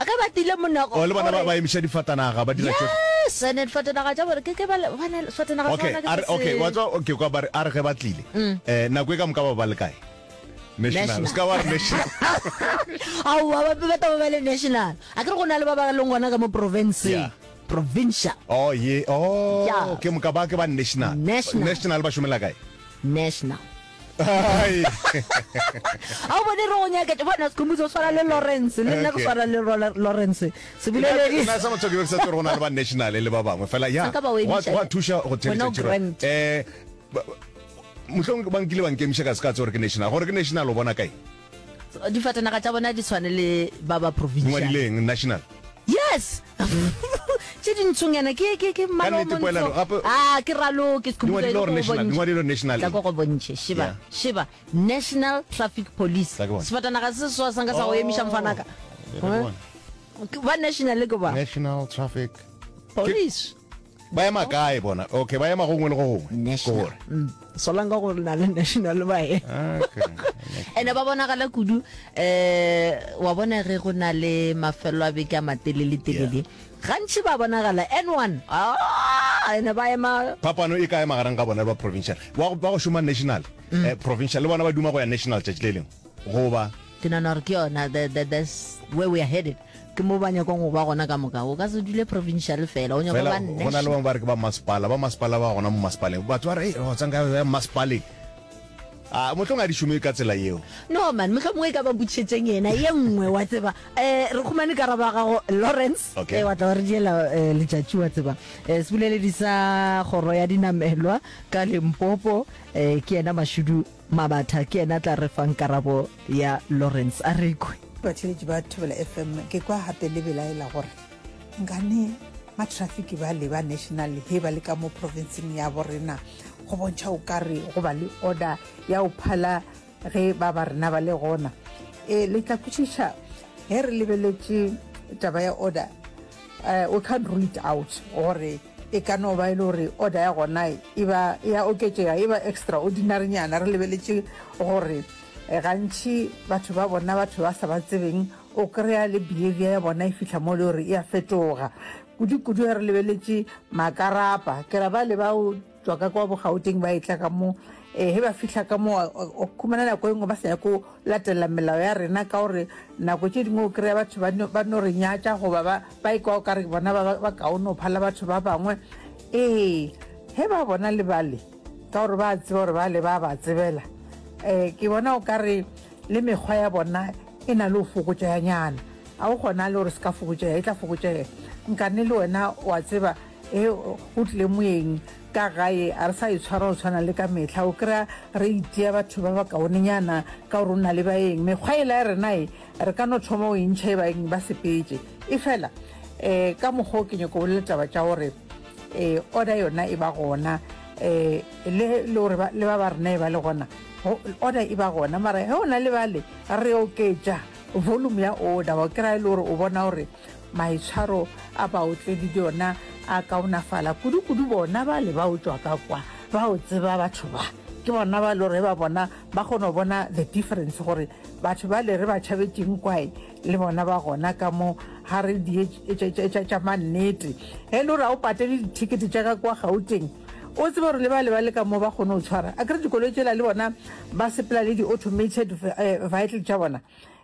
ge ba tile monago oh, le bona ba emiša difatanaga ba dira sene difatanaga tša bore ke ke ba bona difatanaga okay are okay wa tswa okay kwa ba are ge ba tlile mm. eh nako e ka moka ba ba le kae national ska wa national au wa ba ba ta ba le national a ke re go na le ba ba leng gona ka mo province provincial oh ye oh ke moka ba ke ba national national ba shumela kae national a o bone re go nyaketša bona sekhomotsi o swana le lawrence le nna ke swana le lawrence sebolelelina sa motho ke be ke sa tse go na le ba national le ba bangwe fela ya wa thuša go theletša um motlhong ba nkile ba nkemiša ka se ka tse gore ke national gore ke national o bona kae difatanaga tša bona di tshwane le ba ba provincial national yes tše dintshong yana ke ke ke malomontsho ah ke ralo ke sekhubuelo national tla go bontšhe shiba shiba national traffic police sefatanaga se swa sanga sa go emiša mfanaka ba national ke ba national traffic police ba ema kae bona okay ba ema gongwe le go gongwe national mm. solang ka gore na le national ba e ene ba bonagala kudu eh wa bona ge go na le mafelo a beke a matelele telele gantši ba bonagala n one ah, ene ba ema phapano e ka ema gareng ga bona ba provincial ba go šoma national mm. eh, provincial le bona ba duma go ya national tšatši le lengwe goba. Ke nana gore ke yona the, the, the where we are headed ke mo ba nyakong go ba gona ka moka o ka se dule provincial fela o nyaka ba nne gona le bangwe ba re ke ba masepala ba masepala ba gona mo masepaleng batho ba re go tsang ka ya masepaleng a motlhong a di šome ka tsela yeo no man motlhong e ka ba butšhetseng yena ye nngwe wa tseba eh re khumane karaba gago Lawrence okay. eh wa tla re diela eh, letšatši wa tseba eh sebuleledi sa goro ya dinamelwa ka Limpopo eh ke yena mashudu Mabatha ke yena a tla re fang karabo ya Lawrence. A re kwe. Batheeletši ba Thobela FM, ke kwa gape le belaela gore nkane ba traffic bale ba national he ba le ka mo provinceng ya bo rena go bontšha o ka re go ba le order ya o phala ge ba ba rena ba le gona. E, le tla kwešiša ge re lebeletše taba ya order, eh, we can't rule it out gore E ka no ba e le gore order ya gona e ba e a oketšega, e ba extraordinary-nyana. Re lebeletše gore eh, gantši batho ba bona batho ba sa ba tsebeng, o kry-a le behavior ya bona e fihla mo e le gore e a fetoga. Kudu-kudu ge re lebeletše makarapa, ke ra bale ba o tswa ka kwa bogauteng ba e tla ka mo, eh, ge ba fihla ka mo, o khumana nako e nngwe ba sa nyako Latela melao ya rena ka gore nako tše dingwe o kry-a batho ba no re nyatša goba ba e kwa o ka re bona ba kaone go phala batho ba bangwe ee ge ba bona le bale ka gore ba tseba gore bale ba ba tsebela um ke bona o ka re le mekgwa ya bona e na le go fokotšeganyana ga o kgona le gore se ka fokotšega e tla fokotšega nkane le wena wa tseba e o tlile moeng Ka gae a re sa itshwara go tshwana le ka mehla, o kry-a re itia batho ba ba kaonenyana ka gore o na le baeng. Mekgwa ela ya rena e, re ka no thoma go e ntšha e baeng ba sepetše. Efela um ka mokgwa o ke nyako bolela taba tša gore um order yona e ba gona um le le gore ba le ba ba rena e ba le gona, order e ba gona mara ge o na le bale re oketša volume ya order wa kry-a e le gore o bona gore Maitshwaro a baotledi le ona a kaonafala, kudu-kudu bona ba le ba otšwa ka kwa. Ba o tseba batho ba. Ke bona ba lo re ba bona ba kgono bona the difference gore batho ba le re ba tšhabetšeng kwae le bona ba gona ka mo ga re di etša tša mannete. Ge lo ra o patele dithekete tša ka kwa Gauteng, o tsebe gore le ba le ba le ka mo ba kgone o tshwara. A kere dikoloi tšela le bona ba sepela le di automated vehicle tša bona.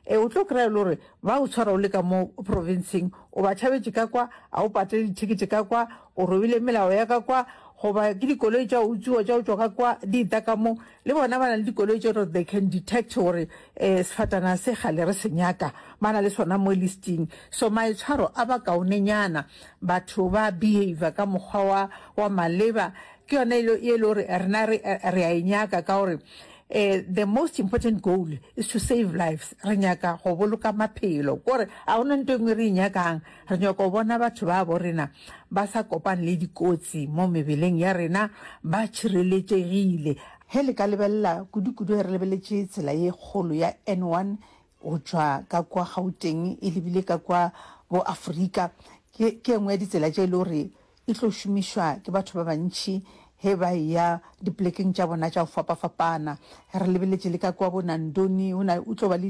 E, o tlo kry-a le gore Ba o tshwara o le ka mo provinseng, o ba tšhabetše ka kwa, a o patele dithekete ka kwa, o robile melao ya ka kwa, goba ke dikoloi tša utsiwa tša o tšwa ka kwa di eta ka mo. Le bona ba na le dikoloi tše gore they can detect gore um sefatana se gale re se nyaka, ba na le sona mo listing. So maitshwaro a ba kaonenyana, batho ba behavior ka mokgwa wa wa maleba, ke yona e le gore rena re re a e nyaka ka gore Eh, the most important goal is to save lives. Re nyaka go boloka maphelo. Kore, a ona nto engwe re inyakang. Re nyaka go bona batho ba bo rena ba sa kopane le dikotsi mo mebeleng ya rena ba tšhireletšegile. He le ka lebelela kudu-kudu he re lebeletše tsela ye kgolo ya N1 go tšwa ka kwa Gauteng e lebile ka kwa bo Afrika, ke, ke engwe ya ditsela tše e le gore E tlo šomišwa ke batho ba bantši ge ba eya dipolekeng tša bona tša go fapafapana. Re lebeletše le ka kua bo Nandoni, go na, go tlo ba le